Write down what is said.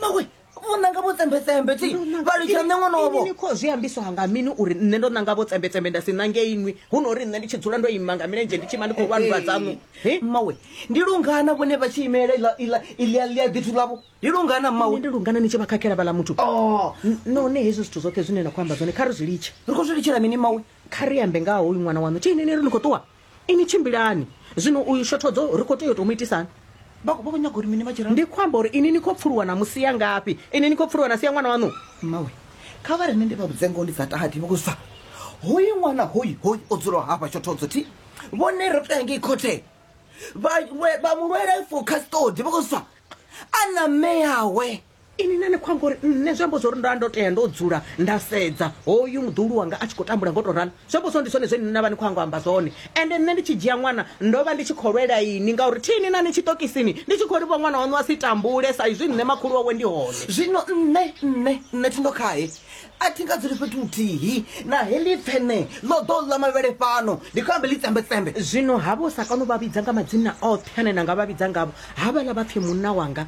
mawe vho nanga vho tsembetsembe ti vha litsha nṋe ṅwana wavho ni khou zwi ambiswa nga mini uri nṋe ndo nanga vho tsembetsembe nda si nange inwi hu no uri nṋe ndi tshi dzula ndo ima nga milenzhe ndi tshi ima ndi khou lwanulwa dzaṋu He? mawe ndi lungana vhone vha tshi imelela iḽa- iḽa- iḽia ḽia ḓithu ḽavho ndi lungana Nṋe mawe ndi lungana ni tshi vha khakhela vhala muthu Oh, N- none hezwi zwithu zwoṱhe zwine na khou amba zwone kha ri zwi litshe ri khou zwi litshela mini mawe kha ri ambe nga ha hoyu ṅwana waṋu tshi inini ri ni khou ṱuwa Ini tshimbilani zwino uyu shothodzo ri khou tea u tou mu itisani? Vha khou vha vho nyaga uri mini vha tshi ralo? Ndi khou amba uri ini ni khou pfuluwa na mu sia ngafhi? Ini ni khou pfuluwa na sia ṅwana waṋu? Mmawe, kha vha ri nṋe ndi vha vhudze ngoho ndi sa tahadi vha khou zwa. Hoyu ṅwana hoyu hoyu o dzulaho hafha shothodzo thi vhone ro tou ya ngei khothe vha mu lwela for custody vha khou zwa a na mme awe. ini nane khou amba uri nṋe zwi amba zwa uri nda ndo tea ndo dzula nda sedza hoyu muḓulu wanga a tshi khou tambula ngo tou ralo zwi amba zwa ndi zwone zwe nṋe na vha ni khou ango amba zwone ende nṋe ndi tshi dzhia ṅwana ndo vha ndi tshi khou lwela ini ngauri thini na ni tshiṱokisini ndi tshi khou ri vho ṅwana waṋu a si tambule sa izwi nṋe makhulu wawe ndi hone zwino nṋe nṋe nṋe thindo khae a thi nga dzuli fhethu huthihi na heḽi pfene ḽo ḓo ḽa mavhele fhano ndi khou ambe ḽi tsembetsembe zwino havho sa kano vha vhidza nga madzina oṱhe ane na nga vha vhidza ngavho havhaḽa vha pfhi munna wanga